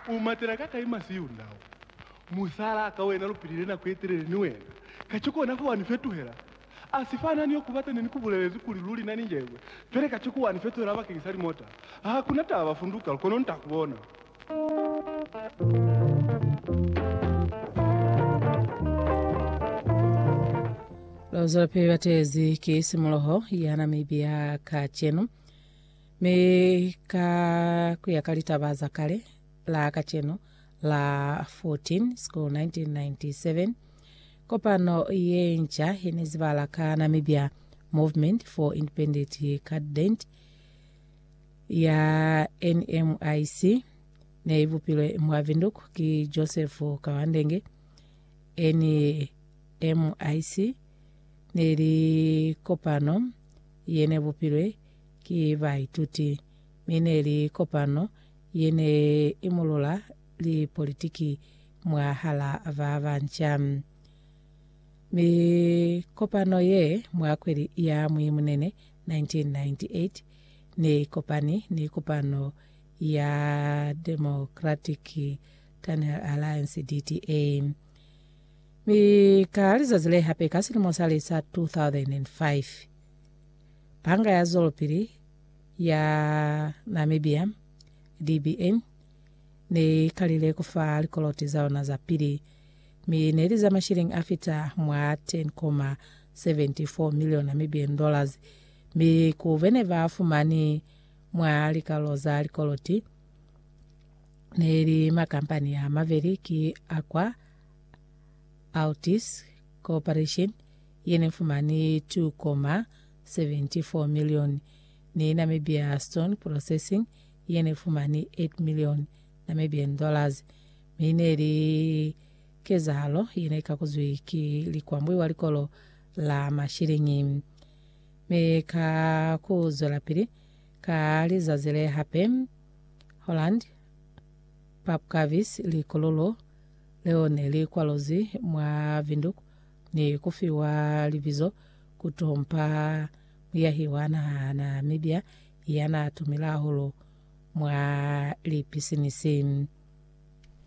U matela ka kai masi yo ndau? Musala ka wena lu pilile nako ye telele ni wena, kaciko ona fa wa ni fetuhela? A si fana ni yo ku bata ne ni ku bulelezi kuli luli na ni njebwe, pele kaciko wa ni fetuhela bakeng sa limota. Ha ku na taba, funduka, lu kono nta ku bona. Lozwelapili batezi ki simuloho ya Namibia kacenu. Mi ka kuya ka litaba za kale la kacenu la 14 School 1997, kopano ye nca ye ne zibala ka Namibia Movement for Independent Cadet ya NMIC ne i bupilwe mwa Windhoek ki Joseph Kawandenge. NMIC ne li kopano ye ne bupilwe ki baituti, mi ne li kopano ye ne imulula lipolitiki mwahala ba banca. Mi kopano ye mwa kweli ya Mwimunene 1998 ne i kopani ni kopano ya Democratic Tunnel Alliance, DTA, mi ka lizazi le hape ka silimo sa li sa 2005, Banga ya Zwelopili ya Namibia, DBA, ne i kalile ku fa likoloti za yona za pili, mi ne li za mashilingi a fita mwa 10.74 million Namibian dollars, mi ku be ne ba fumani mwa likalo za likoloti ne li makampani a mabeli ki Aqua Altis Corporation ye ne fumani 2.74 milioni, ni Namibia Stone Processing ye ne fumani 8 milioni Namibian dollars, mi ne li kezahalo ye ne kakuzwi ki likwambwi wa likolo la mashiliñi. Mi ka ku zwelapili ka lizazi le hape, Holland Papkavis, likululu leo ne li kwaluzwi mwa Windhoek, ni ku fiwa libizo ku Tom Pa, muyahi wa naha ya Namibia ya naa tumile hahulu mwa lipisinisi.